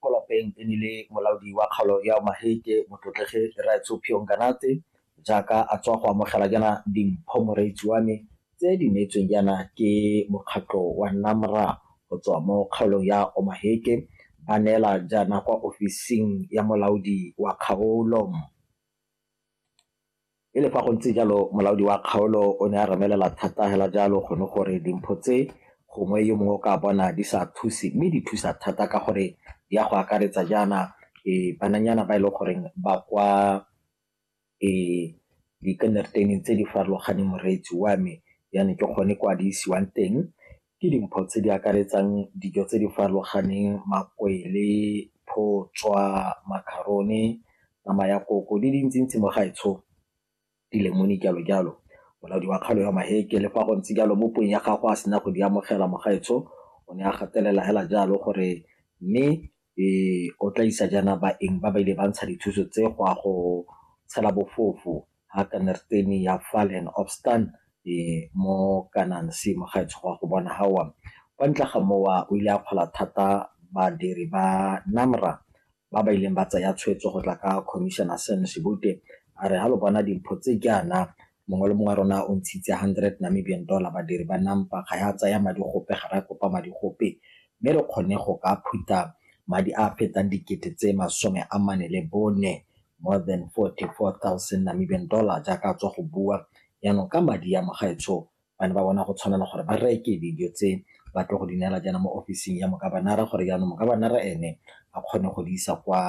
Mo lapeng e nnile molaodi wa kgaolo ya Omaheke, Motlotlegi Rraetsho Phiyo Nganatse, jaaka a tswa go amogela jaana dimpho moreetsi wa me tse di neetsweng jaana ke mokgatlho wa NAMRA go tswa mo kgaolong ya Omaheke, ba neela jaana kwa ofising ya molaodi wa kgaolo. E le fa go ntse jalo, molaodi wa kgaolo o ne a remelela thata fela jalo gone gore dimpho tse gongwe yo mongwe o ka bona di sa thuse mme di thusa thata ka gore di ya go akaretsa jaana e bananyana ba e leng goreng ba kwa e dikenderteneng tse di farologaneng moreetsi wa me yane ke gone kwa di isiwang teng Ke dimpho tse di akaretsang dijo tse di farologaneng, makwele, photswa, makharone, nama ya koko di dintsi-ntsi mo gaetsho, dilemone jalo-jalo. Molaodi wa kgaolo ya Maheke le fa go ntse jalo mo puong ya gagwe a sena go di amogela mo gaetsho o ne a gatelela hela jalo gore mme Ee, o tla isa jaana baeng ba ba ile ba ntsha dithuso tse go a go tshela bofofo ga kanerteni ya fall and obstan e mo kanang se mo gaetsho go a go bona gawa kwa ntle ga mowa o ile a kgola thata badiri ba namra ba ba ileng ba tsaya tshwetso go tla ka commissioner sam sebute a re ga lo bona dimpho tse jaana Mongwe le mongwe wa rona o ntshitse 100 Namibian dollar, badiri ba NAMPA ga ya tsaya madi gope, ga re a kopa madi gope, mme re kgonne go ka phutha madi a a fetang dikete tse masome a mane le bone, more than 44,000 Namibian dollar, jaaka a tswa go bua. Jaanong ka madi a, Mogaetsho ba ne ba bona go tshwanela gore ba reke dijo tse ba tlo go di neela jaana mo ofising ya Mogabanara, gore jaanong Mogabanara ene a kgone go di isa kwa.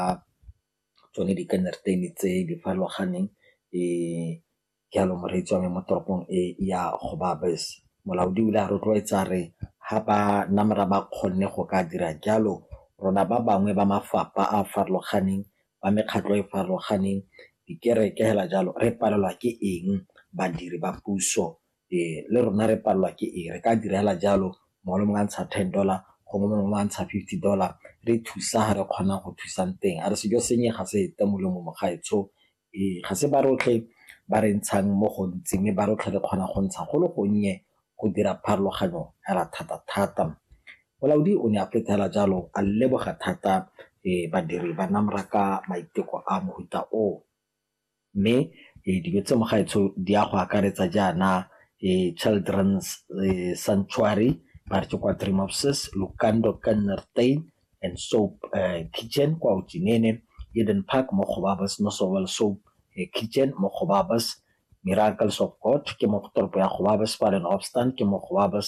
tsone di ka nna tse di farologaneng jalo moreetsi wa me mo toropong e ya go baya bese. Molaodi o ile a rotloetsa a re ga ba namelwa ba kgonne go ka dira jalo rona ba bangwe ba mafapha a a farologaneng ba mekgatlho e e farologaneng dikereke fela jalo re palelwa ke eng badiri ba puso. Ee, le rona re palelwa ke eng? Re ka dira fela jalo, mongwe le mongwe a ntsha ten dollar, gongwe mongwe le mongwe a ntsha fifty dollar, re thusa fa re kgonang go thusang teng. A re sejo sennye ga se fete molomo mogaetsho. Ee, ga se ba rotlhe ba re ntshang mo gontsi, mme ba rotlhe re kgona go ntsha go le gonnye go dira pharologanyo fela thata-thata. Molaodi o ne a fetsa fela jalo a leboga thata badiri ba NAMRAC ka maiteko a mofuta o. Mme dilo tse mo gaetsho di ya go akaretsa jaana Children's Sanctuary ba re ke kwa Three Mopses, Lukando Kannertein and Soap Kitchen kwa Otjinene, Eden Park mo Gobabis, Nosowel Soap Kitchen mo Gobabis, Miracles of God ke mo toropo ya Gobabis, Fallen Obstant ke mo Gobabis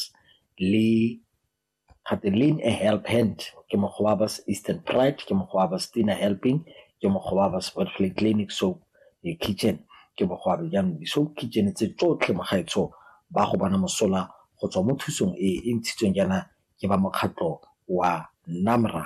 le Gate lean a help hand ke mokgwa wa Eastern Pride, ke mokgwa wa Stina Helping, ke mokgwa wa Spotflay Clinic so the kitchen ke mokgwa wa jaanong di so kitchen tse tsotlhe mo gaetsho ba go bona mosola go tswa mo thusong e e ntshitsweng jaana ke ba mokgatlho wa NAMRA.